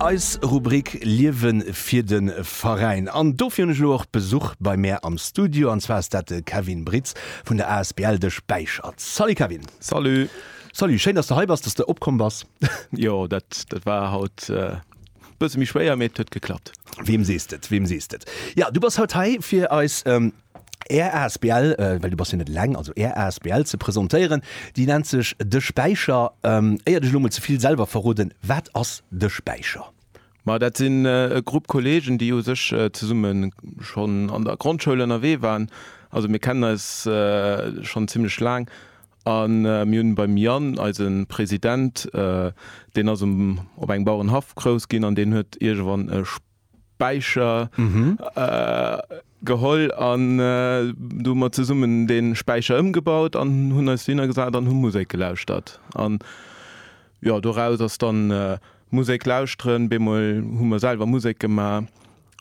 Eis Rubrik Liewe fir de Veräin. An dofir hunn ech elo och Besuch bei mär am Studio, an zwar ass dat de Kevin Britz vun der asbl De Späichert. Salut Kevin. Salut. Salut, schéin dass de hei bass, dass de opkomm bass. Jo, dat war haut e bësse méi schwéier, mee et huet geklappt. Weem sees de et, weem sees de et. Jo, du bass haut hei fir eis. Är Asbl, well du bass jo net eleng, also Är Asbl ze presentéieren. Déi nennt sech De Späicher. Éier dech elo mol ze vill selwer verroden, wat ass De Späicher? Ma dat sinn e Grupp Kolleegen, déi u sech zesumme schonn an der Grondschoul ënnerwee waren. Also mir kennen eis schonn zimmlech laang a mir hunn beim Yann, eise President, deen ass op engem Bauerenhaff grouss ginn an deen huet iergendwann e Späicher geholl an do hu mer zesummen dee Späicher ëmgebaut an hunn eis dohinner gesat an hu Musek gelauschtert. An jo, doraus ass dann Musek lauschteren, bemol hu mer selwer Musek gemaach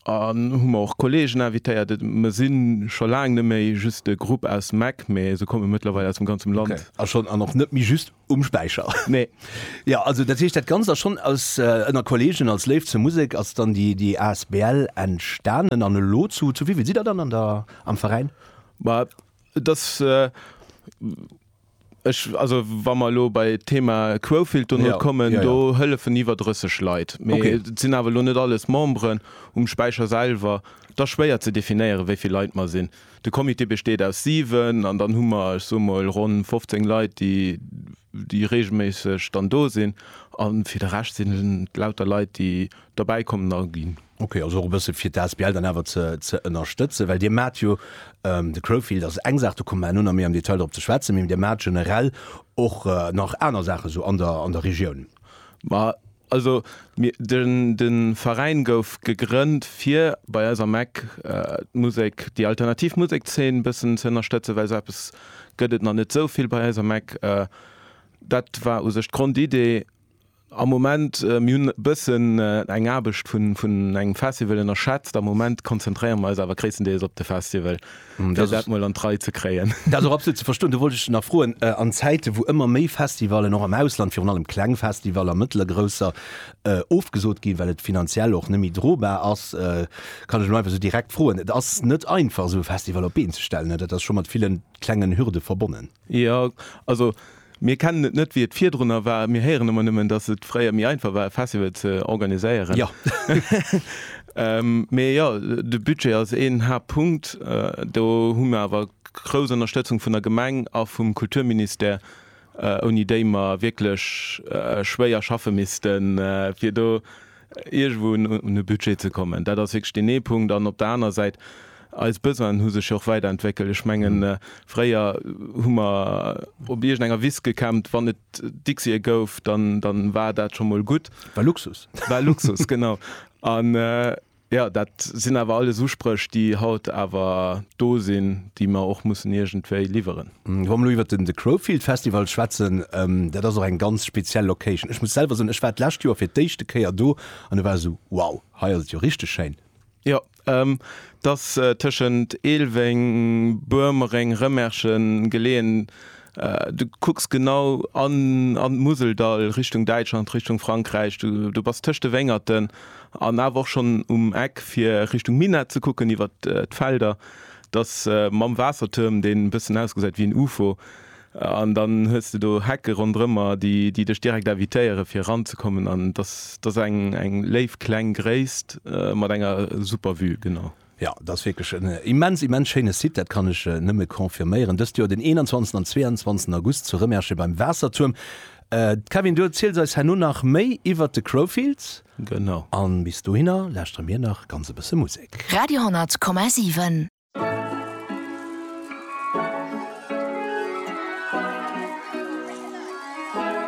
an hu mer och Kolleegen invitéiert. Et mer si scho laang net méi just e Grupp aus Mack, mee se komme mëttlerweil aus dem ganzem Land. An och net méi just Um Späicher? Nee. Jo, also dat heescht, dat Ganzt ass schonn aus, ënner Kolleegen, als Léift zur Musek ass dann déi, déi asbl entstanen. An elo, zu, zu wivill sidd Der dann an der, am Veräin? Bah, et ass, ech, also wa mer elo bei d'Thema Quofield dono kommen, do hëllefen iwwer 30 Leit. Mee et sinn awer elo net alles Memberen um Späicher selwer. Et ass schwéier ze definéieren, wéivill Leit mer sinn. De Comité besteet aus 7, an dann hu mer, ech soe mol, ronn 15 Leit, déi, déi reegelméisseg dann do sinn. A fir de Rescht sinn et lauter Leit, déi derbäi kommen a ginn. Ok, also och e bësse fir d'ASBL dann awer ze, ze ënnerstëtzen. Well Dir maacht jo, de Crowfield ass eng Saach, do komme mer herno nach méi am Detail drop ze schwätzen, mee Dir maacht generell och nach aner Saache sou an der, an der Regioun? Ma Also mir, de Veräin gouf gegrënnt fir bei eis am Eck d'Musek, déi alternativ Musekszeen e bëssen ze ënnerstëtzen, well esou eppes gëtt et nach net esou vill bei eis am Eck. Dat war u sech d'Grondidee. Am Moment, mir hunn e bëssen eng Aarbecht vun engem Festival ënnerschätzt. Am Moment konzentréiere mer eis awer gréisstendeels op de Festival. fir dat mol an d'Rei ze kréien. Dat ass och absolut ze verstoen. Do wollt ech dech nach froen, an Zäite wou ëmmer méi Festivallen och am Ausland, virun allem kleng Festivaller, mëttel a grousser, ofgesot ginn, well et finanziell och net méi drobar ass, kann ech elo einfach esou direkt froen, et ass net einfach esou e Festival op d'Been ze stellen, dat ass scho mat villen klengen Hürde verbonnen. Jo, also mir kennen et net, wéi et virdrunner war. Mir héieren ëmmer nëmmen, dass et fréier méi einfach war, e Festival ze organiséieren. Jo. Mee jo, de Budget ass een Haaptpunkt. Do hu mir awer grouss Ënnerstëtzung vun der Gemeng a vum Kulturministère, ouni déi mer wierklech schwéier schaffe missten, fir do iergendwou un e Budget ze kommen. Dat ass wierklech deen ee Punkt. An op der anerer Säit, eis Besoinen hu sech jo och weiderentwéckelt. Ech mengen, fréier hu mer op iergendenger Wiss gecampt. Wann et Dixië gouf, dann war dat scho mol gutt. War Luxus. War Luxus, genau. An jo, dat sinn awer alles Uspréch, déi haut awer do sinn, déi mer och mussen iergendwéi liwweren. Wa mer elo iwwer den The Crowfield Festival schwätzen, dat ass och eng ganz speziell Location. Ech muss selwer soen, ech war d'lescht Joer fir d'éischte Kéier do an e war esou, wow, hei ass et jo richteg schéin. Jo, et ass tëschent Eelweng, Boermereng, Rëmerschen geleeën. Du kucks genau an an d'Museldall, Richtung Däitschland, Richtung Frankräich. Du bass tëscht de Wéngerten an awer och schonn um Eck, fir Richtung Minett ze kucken iwwer d'Felder. Dass mam Waassertuerm, deen e bëssen ausgesäit wéi en Ufo, an dann hues de do Hecke ronderëmmer, déi dech direkt invitéiere fir eranzekommen. An dass dass eng eng léif kleng Gréisst mat enger super Vue, genau. Jo, dat ass wierklech en immens, immens schéine Site, dat kann ech nëmme confirméieren. Dëst Joer den 21 an 22 August zu Rëmerschen beim Waassertuerm. Kevin, du erziels eis herno nach méi iwwert de Crowfields. Genau. An bis dohinner lauschtere mir nach ganz e bësse Musek. Radio 100 Komma 7.